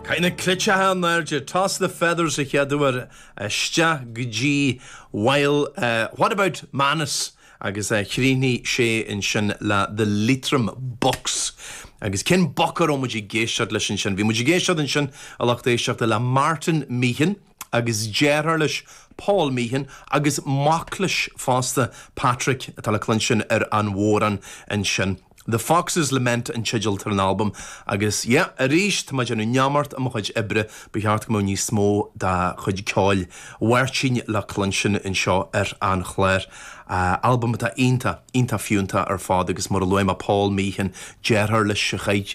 Caith na cleiteacha in airde. Toss the feathers, an chéad uair, isteach go dtí Well, What about Manus? agus chríochnaigh sé ansin le The Leitrim Bucks. Agus cén boc a raibh muid ag éisteacht leis ansin? Bhí muid ag éisteacht ansin a lucht éisteachta le Martin Meehan. agus deartháir leis, Paul Meehan, agus mac leis fosta, Patrick, atá le cluinstin ar an bhodhrán ansin. The Fox's Lament an teideal atá ar an albam agus, yeah, arís, tá mé ag déanamh neamart i mo chuid oibre, ba cheart go mbeadh níos mó dá chuid ceoil, Martin, le cluinstin anseo ar an chlár. Albam atá iontach, iontach fiúntach ar fad agus mar a luaigh mé Paul Meehan, deartháir leis, a chaith,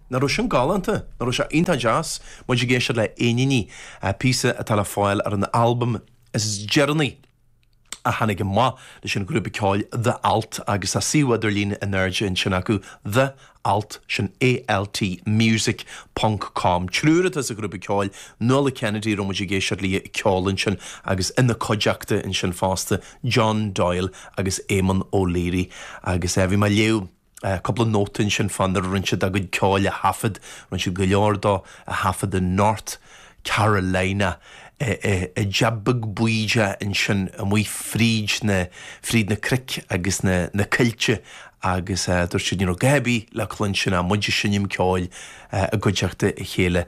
Nach raibh sin galánta? Nach raibh sé iontach deas? Muid ag éisteacht le 'Éiníní', píosa atá le fáil ar an albam is deireanaí a tháinig amach leis an ghrúpa ceoil The Alt, agus tá suíomh idirlín in airde ansin acu, The Alt, sin A-L-T, Music ponc com. Triúr atá sa ghrúpa ceoil, Nuala Kennedy, a raibh muid ag éisteacht léi ag ceol ansin agus ina cuideachta ansin fosta, John Doyle agus Éamon O'Leary. Agus eh bhí mé ag léamh. Cúpla nóta ansin fán áit ar rinn siad a gcuid ceoil a thaifead. Rinn siad go leor dó a thaifead i North Carolina. i dteach beag bídeach ansin amuigh fríd na fríd na cnoic agus na coillte agus dúirt siad, you know, go raibh sé le cluinstin, agus muid ag seinm ceoil i gcuideachta a chéile.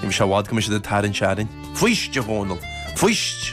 Ní bheidh sé i bhfad go mbeidh siad ag tarraingt orainn. Fuist, a Dhónaill, fuist!